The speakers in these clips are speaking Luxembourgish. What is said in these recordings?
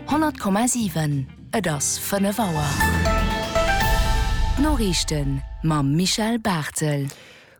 100,7 Et ass 5 Auer. D'Noriichten mam Michel Barthel.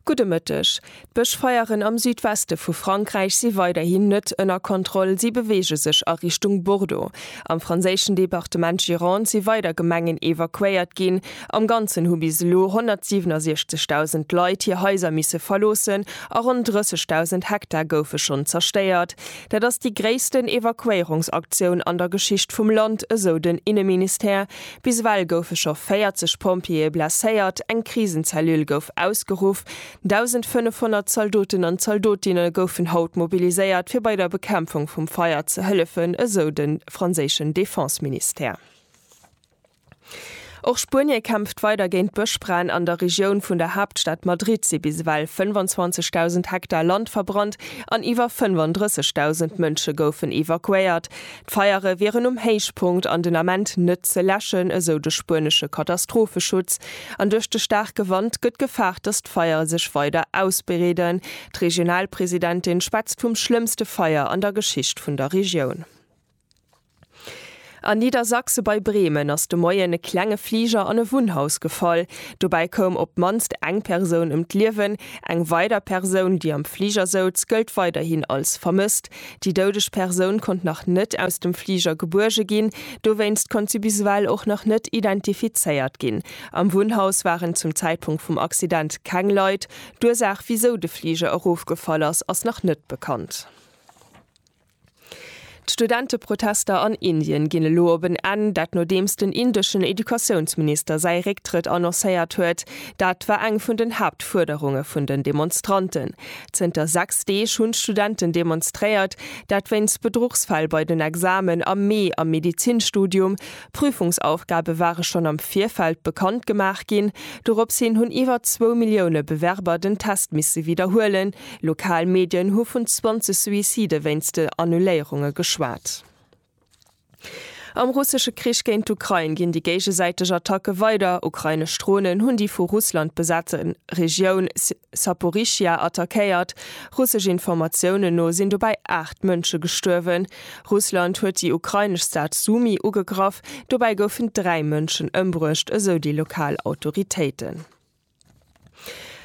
Gudde Mëtteg. D'Bëschfeieren am Südweste vu Frankräich si weiderhin net ënner Kontroll, si beweege sech a Richtung Bordeaux. Am franséischen Departement Gironde si weider Gemengen evakuéiert ginn. Am Ganzen hu bis elo 167.000 Leit hir Haiser misse verloossen a ronn 30.000 Hektar goufe schonn zerstéiert. Dat ass déi gréissten Evakuéierungsaktioun an der Geschicht vum Land, esou den Inneministère. Bis ewell goufe scho 40 Pompjeeë blesséiert, eng Krisenzellule gouf ausgeruff, 1.500 Zaldoten an Zaldotinne goufen haut mobiliséiert, fir bei der Bekämpfung vum Feier ze hëllefen, esou de franséischen Defenseministère. Och Spuenie kämpft weider géint Bëschbränn. An der Regioun vun der Haaptstad Madrid si bis ewell 25.000 Hektar Land verbrannt an iwwer 35.000 Mënsche goufen evakuéiert. D'Feiere wieren um Héichpunkt an den Ament net ze läschen, esou de spuenesche Katastropheschutz. An duerch de staarke Wand gëtt gefaart, datt d'Feier sech weider ausbreeden. D'Regionalpresidentin schwätzt vum schlëmmste Feier an der Geschicht vun der Regioun. A Niedersachse bei Bremen ass de Moien e klenge Fliger an e Wunnhaus gefall. Dobäi koum op d'mannst eng Persoun ëm d'Liewen. Eng weider Persoun, déi am Fliger souz, gëllt weiderhin als vermësst. Déi doudeg Persoun konnt nach net aus dem Fliger gebuerge ginn. Dowéinst konnt si bis ewell och nach net identifizéiert ginn. Am Wunnhaus waren zum Zäitpunkt vum Accident keng Leit. D'Ursaach, wisou de Fliger erofgefall ass, ass nach net bekannt. D'Studenteprotester an Indien ginn elo op en Enn, dat nodeems den indeschen Educatiounsminister säi Récktrëtt annoncéiert huet. Dat war eng vun den Haaptfuerderunge vun den Demonstranten. Zënter 6 Deeg hunn d'Studenten demonstréiert, dat wéinst Bedruchsfäll bei den Examen am Mee am Medizinstudium. Prüfungsaufgabe ware schonn am Virfeld bekannt gemaach ginn. Dorops hin hunn iwwer zwou Millioune Bewerber den Test misse widderhuelen. Lokal Medien hu vun 20 Suicide wéinst de Annuléierunge geschwat. Am russesche Krich géint d'Ukrain ginn déi géigesäiteg Attacke weider. Ukrainesch Dronen hunn déi vu Russland besate Regioun Saporischschja attackéiert. Russesch Informatiounen no sinn dobäi 8 Mënsche gestuerwen. Russland huet déi ukrainesch Stad Sumy ugegraff. Dobäi goufen dräi Mënschen ëmbruecht, esou déi lokal Autoritéiten.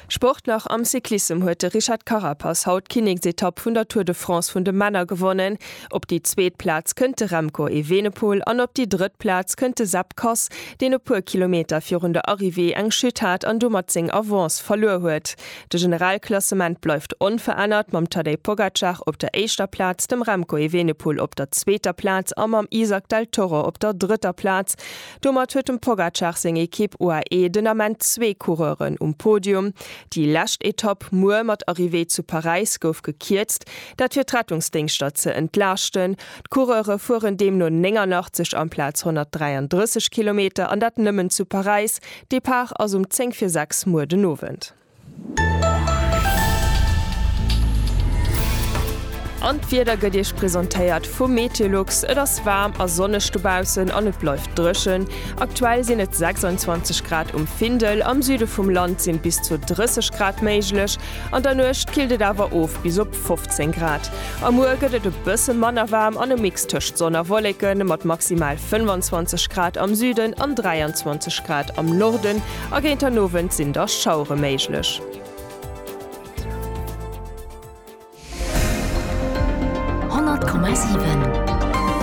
Sport nach, Am Cyclissem huet de Richard Carapaz haut d'Kinneksetapp vun der Tour de France vun de Männer gewonnen. Op déi zweet Plaz kënnt de Remco Evenepoel an op déi drëtt Plaz kënnt de Sepp Kuss, deen e puer Kilometer virun der Arrivée eng Chute hat an domat seng Avance verluer huet. De Generalklassement bleift onverännert, mam Tadej Pogacar op der éischter Plaz, dem Remco Evenepoel op der zweeter Plaz a mam Izack Del Toro op der drëtter Plaz. Domat huet dem Pogacar seng Ekipp UAE den Ament zwee Coureuren um Podium. Déi lescht Etapp muer mat Arrivée zu Paräis gouf gekierzt, dat fir d'Rettungsdéngschter ze entlaaschten. D'Coureure fueren deemno 89 amplaz 133 Kilometer an dat nëmmen zu Paräis. Depart ass um 10 vir 6 muer den Owend. An d'Wieder gëtt Iech presentéiert vu Meteolux. Et ass waarm a sonneg dobaussen an et bleift dréchen. Aktuell sinn et 26 Grad um Findel. Am Süde vum Land sinn bis zu 30 Grad méiglech. An der Nuecht killt et awer of bis op 15 Grad. A muer gëtt et e bësse manner waarm an e Mix tëscht Sonn a Wolleken mat maximal 25 Grad am Süden an 23 Grad am Norden A géint den Owend sinn da Schauere méiglech.